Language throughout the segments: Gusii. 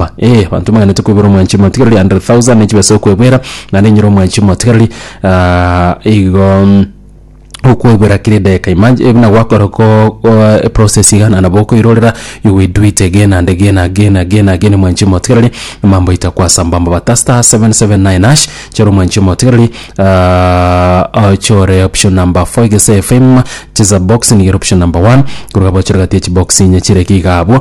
Yehova. Ee, abanto mbaganetie kwebera omwanchi omotigareri, 100,000 ne chibesa okwebera, naende enyora omwanchi omotigareri, ah, igo mm, okwebera kera edageka. Imag- eh, buna gwakora ko- ko- eprocess iga, na nabo okoirorera, you will do it again and again, again, again, again, omwanchi omotigareri, mambo aito akwasamba mbaba. Ta star 779#, chora omwanchi omotigareri, ah, ochore option number 4 iga ase FM, cheza box niga ere option number 1, korwa abwo ochore gati ya chibox inye chire iga abwo.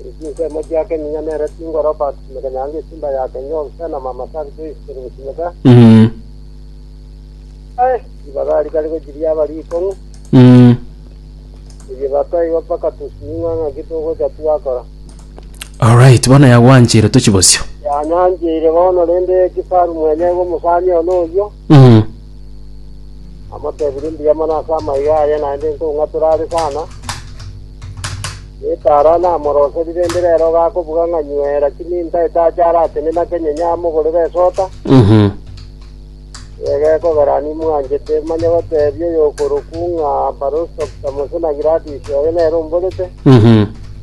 Eri chinsemo chia keminya nere chingoro bakusimeka nyango esimba ya kenya obisa na mama sabi toisikeri gusimeka Mm. ae ribaga rikari gochiria abari ikong'u Mm. eye bataiwa mpaka tusiming'a ng'aki togocha twakora Alright, bono yagwanchire tochi bosio. yanyancheire bono rende kifaru mwenye igo mosani ono oyio Mm. Amotebirie mbuya mono ase amaiga aria naende nkong'atora are sana. Etara namoroserire inde rero gakobuga ng'a nywera chiminta etache arateme na kenyenye amogorere esota. Mhm. Ega ekogera nimwanchete manye gotebia oyokorokwu ng'a Barostock Samosona Gladys oyo nere omborete. Mhm.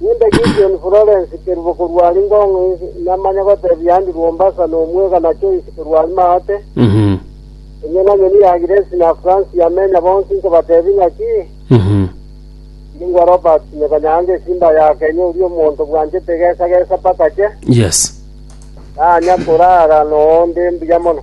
Ninde Gideon Florence Kerubo korwa are Ngong East, namanya gotebia Andrew Ombasa nomwega na Joyce korwa are Maate, Mhm. onye na nyoni ya Grace na Francis Yamenya bonsi nkobatebia ng'aki, Mhm. ningwa Robert Nyeka Nyange esimba ya Kenya oria omonto bwanchete egesa gesa mpaka che, Yes. tanya korara noonde mbuya mono.